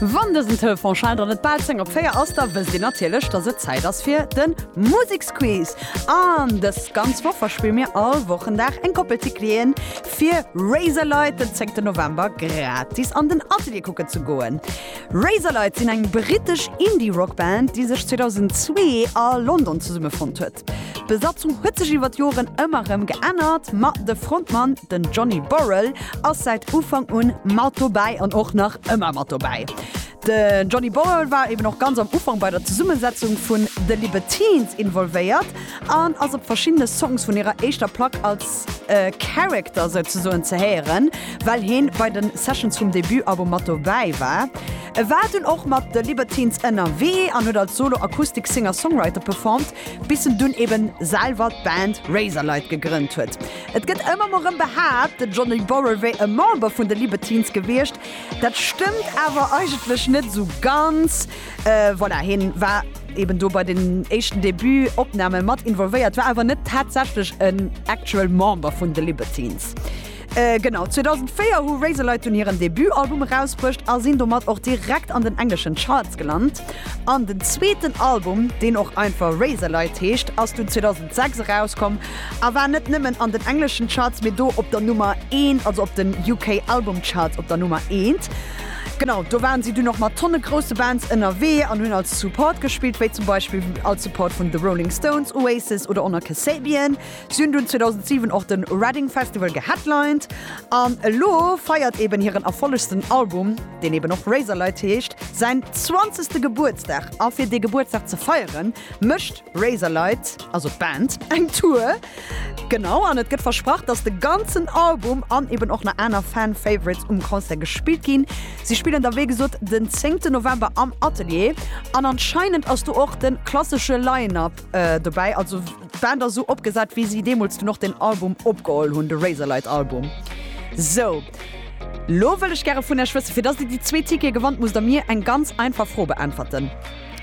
Wann dësen Tour von Chant der net bal 10 op 4 ass, da wësst dir natierlech, dass et Zäit ass fir den Museksquiz. An dës ganz Woch verspille mir all Wochendag eng Koppel Ticket'en fir Razorlight den 10 November gratis an den Atelier kucken ze goen. Razorlight sinn eng brittesch Indie-Rock Band, déi sech 2002 a London zesummefonnt huet. Bassist. D'Besatzung huet sech iwwer d'Joren ëmmer rëm geännert, ma de Frontmann, den Johnny Borrell, ass säit Ufank un mat dobäi an och nach ëmmer mat dobäi. De Johnny Borrell war eben och ganz am Ufank bei der Zesummesetzung vun The Libertines involvéiert an ass op verschiddene Songs vun hirer éischter Plack als Character souzesoen ze héieren, well hien bei de Sessions vum Debut-Album mat dobäi war. E war dunn och mat The Libertines ënnerwee an huet als Solo Acoustic Singer-Songwriter performt, bis en dunn eben selwer d'Band Razorlight gegrënnt huet. Et gëtt ëmmer mol rëm behaapt, de Johnny Borrell wéi e Member vun The Libertines gewiescht. Dat stëmmt awer eigentlech net esou ganz. Voilà, hien war eben do bei den éischten Debut-Opname mat involvéiert, war awer net tatsächlech en actual Member vun The Libertines. Genau, 2004 hu Razorlight dunn hiren Debutalbum erausbruecht a sinn domat och direkt an den engleschen Charts gelant. An den zweeten Album, deen och einfach Razorlight heescht, ass dunn 2006 erauskomm a war net nëmmen an den engleschen Charts, mee do op der Nummer Eent, also op den UK Album Charts op der Nummer Eent. Genau, do waren si dunn och mat tonne grousse Bands ënnerwee an hunn als Support gespillt, wéi zum Beispill als Support vun The Rolling Stones, Oasis oder Honor Kasabian. Si hunn dunn 2007 och de Reading Festival geheadlined an elo feiert eben hiren erfollegsten Album, deen eben och Razorlight heescht, säin zwanzegste Gebuertsdag. A fir dee Gebuertsdag ze feieren, mécht Razorlight, also d'Band, eng Tour. Genau, an et gëtt versprach, dass de ganzen Album an eben och nach aner Fan-Favorites um Concert gespillt ginn. Si spillen da wéi gesot den zéngten November am Atelier an anscheinend ass do och de klassesche Line-Up dobäi, also. D'Band ass esou opgesat, wéi si deemools dunn och den Album opgeholl hunn, de Razorlight Album. Sou, lo wëll ech gäre vun Iech wëssen, fir datt Dir déi zwee Tickete gewannt, musst Der mir eng ganz einfach Fro beäntwerten.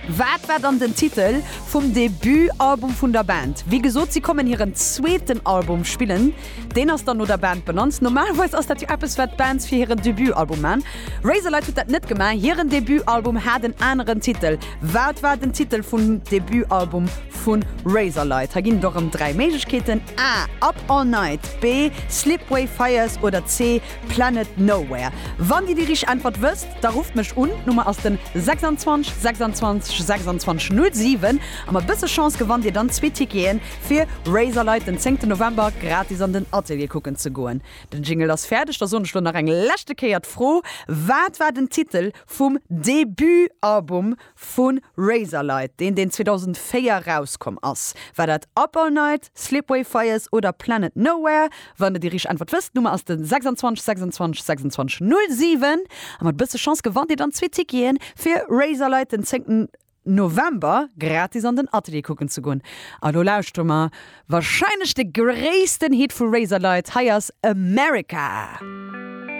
Wat war dann den Titel vum Debut-Album vun der Band? Wéi gesot, si kommen hiren zweeten Album spillen. Deen ass dann no der Band benannt. Normalerweis ass dat jo eppes, wat d'Bands fir hiren Debut-Album man. Razorlight huet dat net gemaach, hiren Debut-Album hat en aneren Titel. Wat war den Titel vum Debutalbum vu Razorlight? Hei ginn et och erëm dräi Méiglechkeeten, A, Up All Night, B, Slipway Fires oder C, Planet Nowhere. Wann Dir déi richteg Äntwert wësst, da rufft mech un. D'Nummer ass den 26 26 26 07 a mat bësse Chance gewannt Dir dann zwee Ticketen, fir Razorlight den zéngten November gratis an den Atelier kucken ze goen. Den Jingle ass fäerdeg, da soen ech elo nach eng leschte Kéier d'Fro, Wat war den Titel Vum Debut-Album vu Razorlight, deen deen 2004 erauskomm ass. War dat Up All Night, Slipway Fires oder Planet Nowhere? Wann der déi richteg Äntwert wësst, d'Nummer ass de 26 26 26 07 a mat e bësse Chance gewannt Dir dann zwee Ticketen fir Razorlight den 10 November gratis an den Atelier kucken ze goen. A lo lauschtere mer wahrscheinlech de gréissten Hit vu Razorlight, hei ass America.